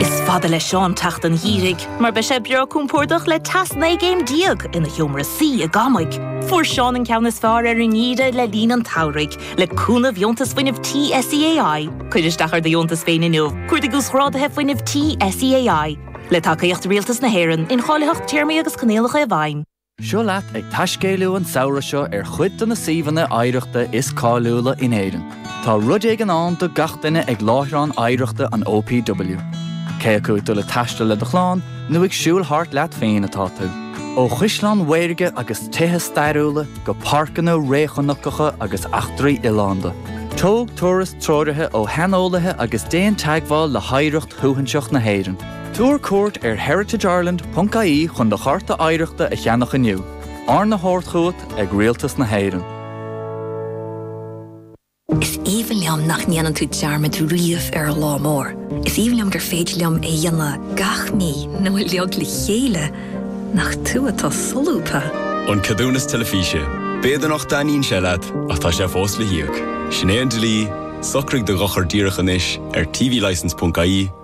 Is fada le Seán teacht an gheimhridh, mar beidh sé breá compordach le teas 19 gcéim ina sheomra suí i gCamaigh. Fuair Seán an ceann is fearr ar an ngeimhreadh le linn an tsamhraidh, le cúnamh dheontas fuinnimh tí SEAI. Cuir isteach ar do dheontas féin inniu, cuardaigh uasghráduithe fuinnimh tí SEAI, le tacaíocht Rialtas na hÉireann, incháilitheacht téarmaí agus coinníollacha i bhfeidhm. Seo leat ag taiscéaladh an samhradh seo ar chuid de na suíomhanna oidhreachta is cáiliúla in Éirinn. Tá rud éigin ann do gach duine ag láithreán oidhreachta an OPW. Cé acu ag dul ag taisteal le do chlann nó ag siúl thart leat féin atá tú, ó chaisleáin mhaorga agus tithe stairiúla go páirceanna réchnocacha agus eachtraí oileánda, tóg turas treoraithe ó shaineolaithe agus déan teagmháil le hoidhreacht shuaithinseach na hÉireann. Tabhair cuairt ar heritageireland.ie chun do Chárta Oidhreachta a cheannach inniu, arna thabhairt chugat ag Rialtas na hÉireann. Is aoibhinn liom nach ndéanann tú dearmad riamh ar an lá mór. Is aoibhinn liom gur féidir liom é a dhéanamh gach mí nó uilig le chéile nach tú atá solúbtha. An Ceadúnas Teilifíse, B'fhéidir nach dtaitníonn sé leat, ach tá sé fós le híoc. Sin é an dlí, socraigh do dhochar díreach anois ar tvlicence.ie.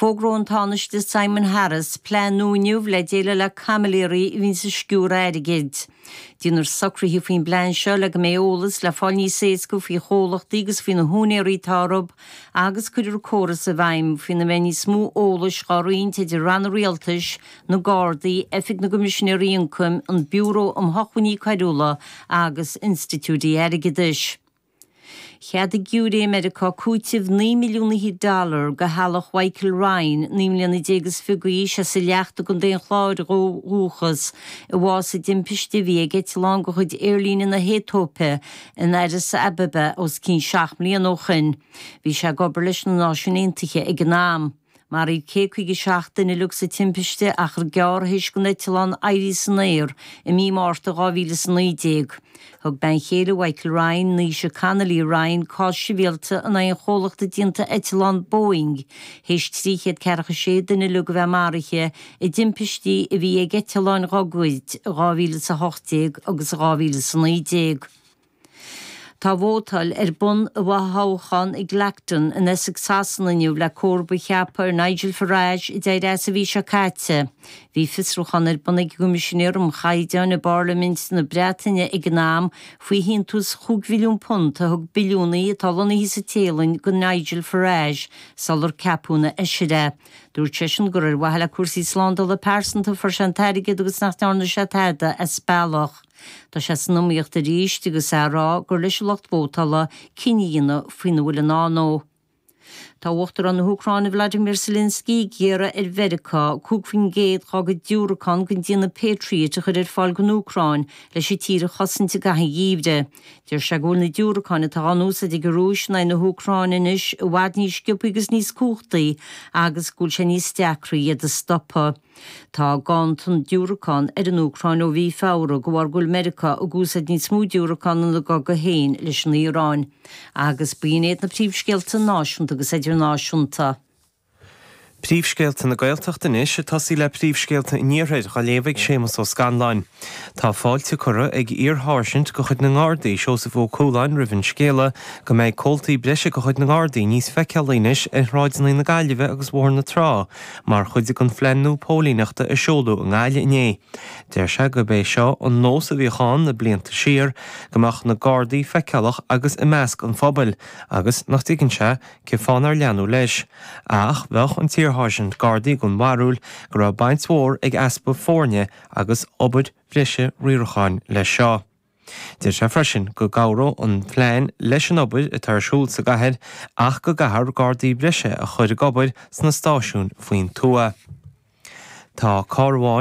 Fógróidh an Tánaiste Simon Harris plean nua inniu le déileáil le caimiléirí a bhíonns ag sciúradh airgid. Déanfar socruithe faoin bplean seo le go mbeidh eolas le fáil níos éasca faoi chomhlachtaí agus faoi na húinéaraí atá orthub agus cuirfear córas i bhfeidhm faoina mbeidh níos mó eolais dhá roinnt idir ranna rialtais, na Gardaí, Oifig na gCoimisinéirí Ioncaim, an Biúró um Shócmhainní Coiriúla agus institiúidí airgeadais. Cheadaigh giúiré i Meiriceá cúiteamh naoi milliún fhichead dollar do theaghlach Mhichael Ryan, naoi mbliana déag is fiche d'aois, as an Leacht i gContae an Chláir ó dhúchas, a bhásaigh i dtimpiste a bhí ag eitleán de chuid Aerlíne na hAetóipe in Addis Ababa os cionn seacht mbliana ó shin. Bhí sé ag obair leis na Náisiúin Aontaithe ag an am. Maraíodh céad caoga a seacht duine uilig sa timpiste achar gearr théis don eitleán éirí san aer i mí Márta dhá mhíle is a naoi déag. Thug bean chéile Mhichael Ryan, Naoise Connolly Ryan, cás sibhialta in aghaidh an chomhlachta déanta eitleán Boeing, théis trí chéad ceathracha a sé duine uilig a bheith maraithe i dtimpistí a bhí ag eitleáin dhá gcuid i dhá mhíle is a hocht déag agus dhá mhíle is a naoi déag. Tá vótáil ar bun i bhfothoghchán i gClacton in Essex Shasana inniu le comharba a cheapadh ar Nigel Farage a d'éirigh as an mhí seo caite. Bhí fiosrúchán ar bun ag an gCoimisinéir um Chaighdeáin i bParlaimint na Breataine ag an am faoi shíntiús chúig mhilliún punt a thug billiúnaí atá lonnaithe sa Téalainn do Nigel Farage sular ceapadh ina fheisire é. Dúirt seisean gur ar mhaithe le cúrsaí slándála pearsanta a fuair sé an t-airgead agus nach ndearna sé tada as bealach. Tá sé san iomaíocht arís agus is é a rá gur leis an lucht vótála cinneadh a dhéanamh faoina bhfuil i ndán dó. Tá Uachtarán na hÚcráine Vladimir Zelenskiy ag iarraidh ar Mheiriceá 5 faoin gcéad dá gcuid diúracán den déanamh Patriot a chur ar fáil don Úcráin leis an tír a chosaint i gcaitheamh an gheimhridh. Deir sé go bhfuil na diúracáin atá á n-úsáid ag an Rúis in aghaidh na hÚcráine anois i bhfad níos sciobtha agus níos cumhachtaí agus go bhfuil sé níos deacra iad a stopadh. Tá ganntan diúracán ar an Úcráin ó mhí Feabhra de bharr go bhfuil Meiriceá ag úsáid níos mó diúracán ina gcogadh féin leis an Iaráin. Agus ba iad na príomhscéalta náisiúnta agus idirnáisiúnta. Príomhscéalta na Gaeltachta anois, ag tosú le príomhscéalta an Iarthair, á léamh ag Séamas Ó Scanláin. Tá fáilte curtha ag iar-sháirsint de chuid na nGardaí, Seosamh Ó Cualáin roimh an scéala go mbeidh comhaltaí breise de chuid na nGardaí níos feiceálaí anois ar shráideanna na Gaillimhe agus Bhóthar na Trá, Mar chuid den phlean nua póilíneachta a seoladh i nGaillimh inné, deir sé gurb é seo an nós a bhíodh ann le blianta siar, go mbeadh na Gardaí feiceálach agus i measc an phobail agus nach dtuigeann sé cén fáth nár leanadh leis. Ach bheadh an t-iarsháirsint Gardaí den bharúil go raibh baint mhór ag easpa foirne agus obair bhreise riaracháin leis seo. Deir sé freisin go gcabhródh an plean leis an obair atá ar siúl sa gcathair ach go gcaithfear gardaí breise a chur ag obair sna stáisiúin faoin tuath. Tá carr amháin.